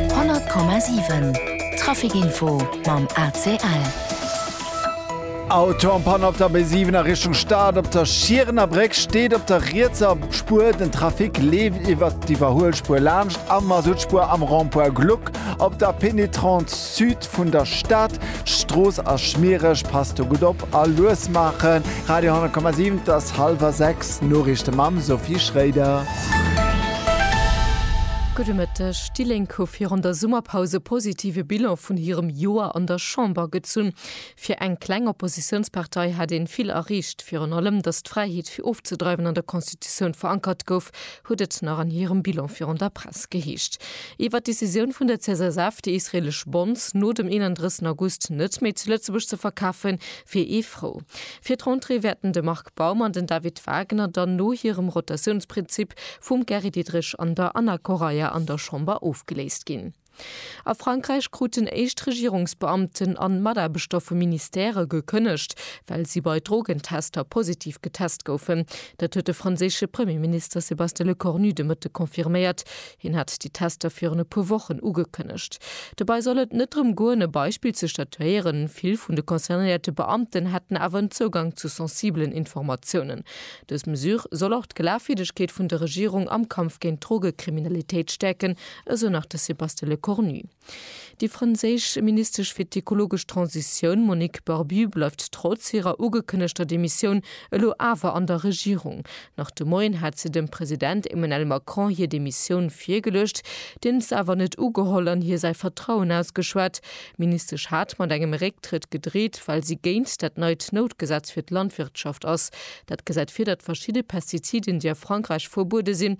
100,7 Trafic Info mam ACL. Autopann op der B7 a Richtung Stad. Op der Schierener Bréck steet op der rietser Spuer den Trafic, leeft iwwert d'Iwwerhuelspuer laanscht a Masuttspuer am Rond-point Gluck. Op der Pénétrante Sud Vun der Stad, Strooss ass schmiereg, passt do gutt op a lues maachen. Radio 10,7 't ass hallwer 6, Noriichte mam Sophie Schréider. Gudde Mëtteg. Déi Lénk hu virun der Summerpaus e positive Bilan vun hirem Joer an der Chamber gezunn. Fir eng kleng Oppositiounspartei hat een vill erreecht, virun allem datt d'Fräiheet fir ofzedreiwen an der Constitutioun verankert gouf, huet et nach an hirem Bilan virun der Press geheescht. Iwwert d'Decisioun vun der CSSF, déi israeelesch Bonds no dem 31 August net méi zu Lëtzebuerg ze verkafen, wier ee frou. Fir d'Rentrée wäerten de Marc Baum an den David Wagner dann no hirem Rotatiounsprinzip vum Gary Diderich an der Anna Correia an der Chamber ofgeléist ginn. A Frankräich kruten éischt Regierungsbeamten an Mataarbechter vu Ministèrë gekënnegt, well si bei Drogentester positiv getest goufen. Dat huet de franséische Premierminister Sébastien Lecornu de Mëtteg confirméiert. Hien hat déi Tester virun e puer Wochen ugekënnegt. Dobäi soll et net drëm goen, e Beispill ze statuéieren. Vill vun de concernéierte Beamten hätten awer en Zougang zu sensibelen Informatiounen. Dës Mesure soll och d'Glaafwierdegkeet vun der Regierung am Kampf géint d'Drogekriminalitéit stäerken, esou nach de Sébastien Lecornu. Déi franséisch Ministesch fir d'ekologesch Transitioun Monique Barbu bleift trotz hirer ugekënnegter Demissioun elo awer an der Regierung. Nach de Moien hat se dem President Emmanuel Macron hir Demissioun virgeluecht, deen se awer net ugeholl an hir säi Vertrauen ausgeschwat. D'Ministesch hat mat engem Récktrëtt gedreet, well si géint dat neit Noutgesetz fir d'Landwirtschaft ass. Dat gesäit vir, datt verschidde Pestiziden, déi a Frankräich verbuede sinn,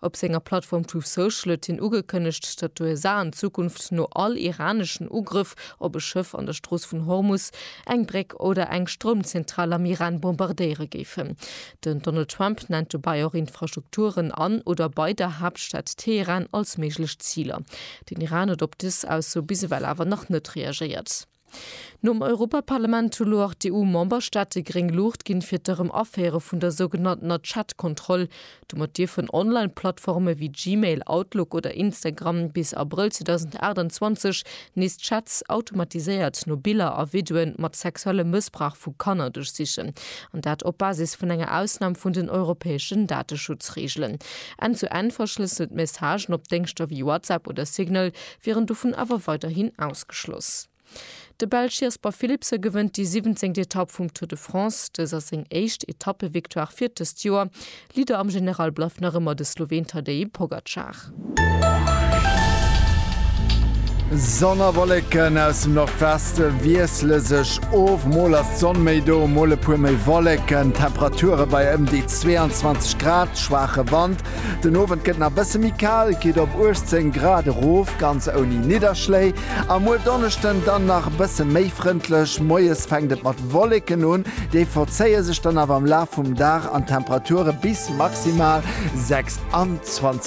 Op senger Plattform Truth Social huet hien ugekënnegt, datt d'USA an Zukunft no all iraneschen Ugrëff op e Schëff an der Strooss vun Hormus eng Bréck oder eng Stroumzentral am Iran bombardéiere géifen. Den Donald Trump nennt dobäi och Infrastrukturen an oder bei der Haaptstad Teheran als méiglech Ziler. Den Iran huet op dës Ausso bis ewell awer nach net reagéiert. Nom Europaparlament hu lo och d'EU-Memberstaate gréng Luucht ginn, fir d'Erëm-Aféiere vun der sougenanntener Chat-Kontroll. Domat dierfen Online-Plattforme wéi Gmail, Outlook oder Instagram bis Abrëll 2028 nees Chats automatiséiert no Biller a Videoe mat sexuellem Mëssbrauch vu Kanner duerchsichen. An dat op Basis vun enger Ausnam vun den europäeschen Dateschutzreegelen. Enn-zu-Enn-verschlësselt Messagen op Déngschter wéi WhatsApp oder Signal wier en dovun awer weiderhin ausgeschloss. De Belsch Jasper Philipsen gewënnt déi siwwenzéngt Etapp vum Tour de France. Dëst ass seng éischt Etappevictoire fir dëst Joer. Leader am General bleift nach ëmmer de Sloween Tadej Pogacar. Sonn a Wollécken aus dem Nordwest wiessle sech of, mol ass d'Sonn méi do, mol e puer méi Wollécken. D'Temperature bei ëm déi 22 Grad, schwaache Wand Den Owend gëtt nach bësse méi kal, et geet op 18 Grad erof, ganz ouni Nidderschléi. A muer Donneschden dann nach bësse méi frëndlech, moies fänkt et mat Wolleken un, déi verzéie sech dann awer am Laf vum Dag an d'Temperature bis maximal 26 Grad.